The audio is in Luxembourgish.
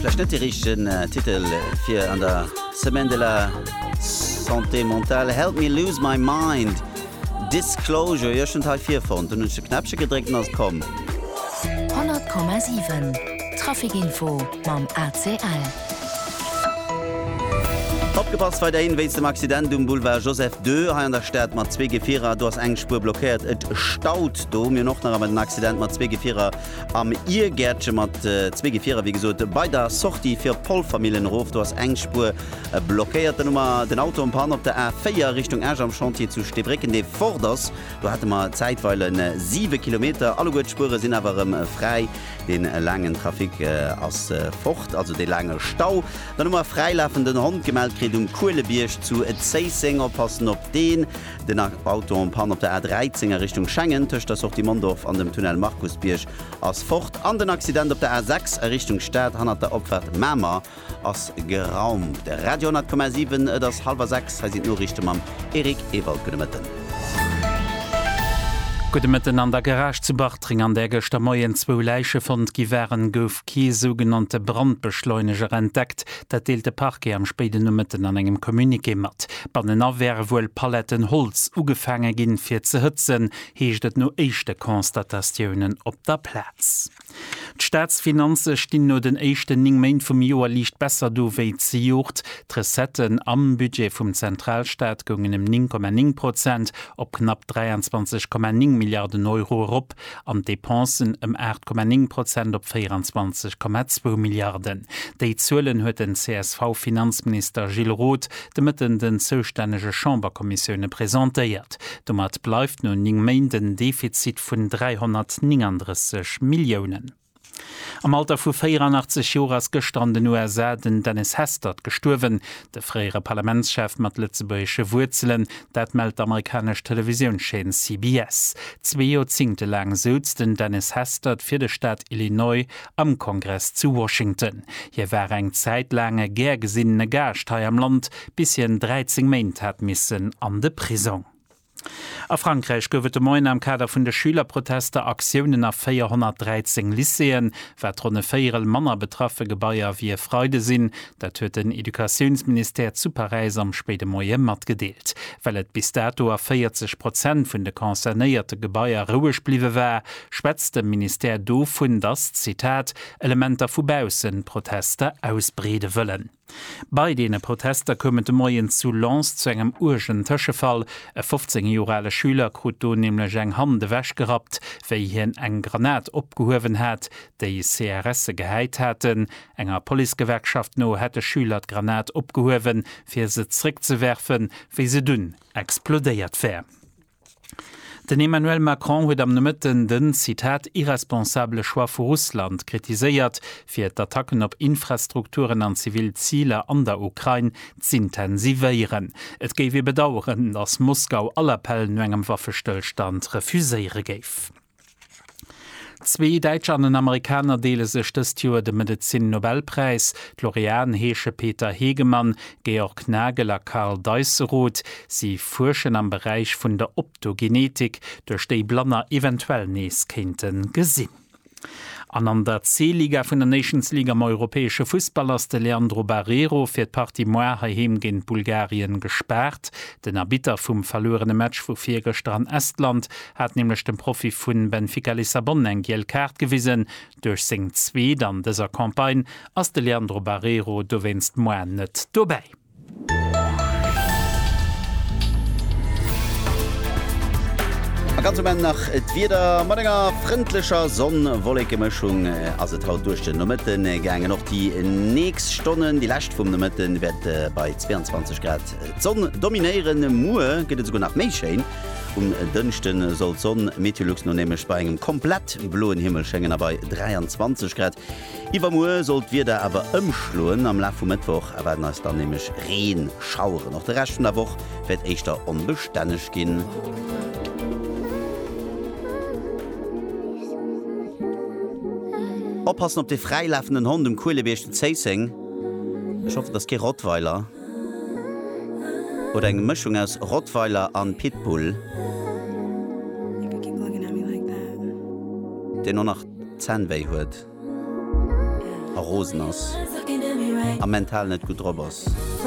Vläicht net de richtegen Titel fir an der Semaine de la Santé Mentale, Help Me Lose My Mind, Disclosure, jo ech hunn et hei virfonnt, dunn hunn ech de Knäppche gedréckt an ass komm. 100,7 Traficinfo mam ACL. Opgepasst weiderhin wéinst dem Accident um Boulevard Joseph ii hei an der Stad mat zwee Gefierer. Do ass eng Spuer blockéiert, et staut do. Mir hunn och nach emmer den Accident mat zwee Gefierer. am Iergäertche mat zwee Gefierer, wéi gesot, bei der Sortie fir op Polfermillen erof. Do ass eng Spuer blockéiert. Dann hu mer den Auto am Pan op der A4 Richtung Esch am Chantier zu Steebrécken, dee fort ass. Do hate mer zäitweile siwe Kilometer. Alleguer d'Spuere sinn awer erëm fräi. Dee laangen Trafic ass fort, also dee laange Stau. Dann hu mer fräilafenden Hond gemellt kritt um Kuelebierg zu Zéisseng. Oppassen op deen. Den Auto en Panne op der A13 a Richtung Schengen tëscht der Sortie Mondorf an dem Tunnel Markusbierg ass fort an den Accident op der A6 a Richtung Stad hannert der Opfahrt Mamer ass geraumt. Radio 10,7 Et ass hallwer 6, hei sinn d'Noriichte mam Eric Ewald. Gudde Mëtten. Gudde Mëtten. An der Garage zu Bartreng, an där gëschter Moien zwou Läiche fonnt gi waren, gouf kee sougenannte Brandbeschleuneger entdeckt. Dat deelt de Parquet am spéiden Nomëtten an engem Communiqué mat. Bannenan wäre wuel Paletten Holz ugefaange ginn, fir ze hëtzen, heescht et no éischte Constatatiounen op der Plaz. D'Staatsfinanze stinn no den éischten 9 Méint vum Joer liicht besser do wéi zejoert. D'Recetten am Budget vum Zentralstaat goungen ëm 9,9 Prozent op knapp 23,9 Milliarden Euro erop. an d'Depensen ëm 8,9 Prozent op 24,2 Milliarden. Déi Zuelen huet den CSV-Finanzminister Gilles Roth de Mëtten den zoustännege Chamberkommissioune presentéiert. Domat bleift no 9 Méint en Defizit vun 339 Milliounen. Am Alter vu 84 Joer ass gëschter an den USA den Dennis Hastert gestuerwen, de fréiere Parlamentschef mat lëtzebuergesche Wuerzelen. Dat mellt d'amerikanesch Televisiounschaîne CBS. Zwee Joerzingte laang souz den Dennis Hastert fir de Staat Illinois am Kongress zu Washington. Hie war eng Zäit laang e gär gesinnene Gaascht hei am Land, bis hien 13 Méint hat missen an de Prisong. A Frankräich gouf et de Moien am Kader vun de Schülerprotester Aktiounen a 413 Lycéeën. Wat ronn e Véierel manner betraffe Gebaier wéi e Freide sinn, dat huet den Educatiounsministère zu Paräis am spéide Moie matgedeelt. Well et bis dato a 40 Prozent vun de concernéierte Gebaier roueg bliwwe war, schwätzt de Ministère dovun, datt, Zitat, Elementer vu baussen d'Protester ausbreede wëllen. Bei deene Protester koum et de Moien zu Lens zu engem uergen Tëschefall. E 15 Joer ale Schüler krut do nämlech eng Hand ewechgerappt, wéi hien eng Granat opgehuewen hat, déi CRSe gehäit haten. Enger Policegewerkschaft no hätt e Schüler d'Granat opgehuewen, fir se zeréckzewerfen, wéi se dunn explodéiert wär. Den Emmanuel Macron huet am Nomëtten den, Zitat, irresponsabele Choix vu Russland kritiséiert, fir d'Attacken op Infrastrukturen an zivil Ziler an der Ukrain z'intensivéieren. Et géif ee bedaueren, datt Moskau all Appell no engem Waffestëllstand refuséiere géif. Zwee Däitscher an en Amerikaner deele sech dëst Joer de Medezin-Nobelpräis. D'Laureaten heesche Peter Hegemann, Georg Nagel a Karl Deisseroth. Si fuerschen am Beräich vun der Optogenetik, duerch déi Blanner eventuell nees kéinte gesinn. An an der C-Liga vun der Nations League am europäesche Fussball ass de Leandro Barreiro fir d'Partie Moarn heiheem géint Bulgarien gespaart. Den Arbitter vum verluerene Match vu virgëschter an Estland hat nämlech dem Profi vu Benfica Lissabon eng giel Kaart gewisen. Duerch seng zweet an dëser Campagne ass de Leandro Barreiro dowéinst moarn net dobäi. A ganz um Enn nach d'Wieder, Mat enger frëndlecher Sonn-Wollekemëschung ass et haut duerch den Nomëtte gaangen. Och déi nächst Stonnen, déi lescht vum Nomëtte wäerte bei 22 Grad d'Sonn dominéieren. Muer gëtt et esouguer nach méi schéin. Um Dënschde soll d'Sonn Meteolux no nämlech bei engem komplett bloen Himmel schéngen a bei 23 Grad. Iwwermuer soll d'Wieder awer ëmschloen, am Laf vum Mëttwoch erwaarden eis dann nämlech Reenschaueren. Och de Rescht vun der Woch wäert éischter onbestänneg ginn. Oppassen op de fräilafenden Hond um Kuelebierg zu Zéisseng. Ech hoffen, et ass kee Rottweiler. Oder eng Mëschung aus Rottweiler an Pitbull? Deen och nach d'Zänn wéi huet a rosen ass a mental net gutt drop ass?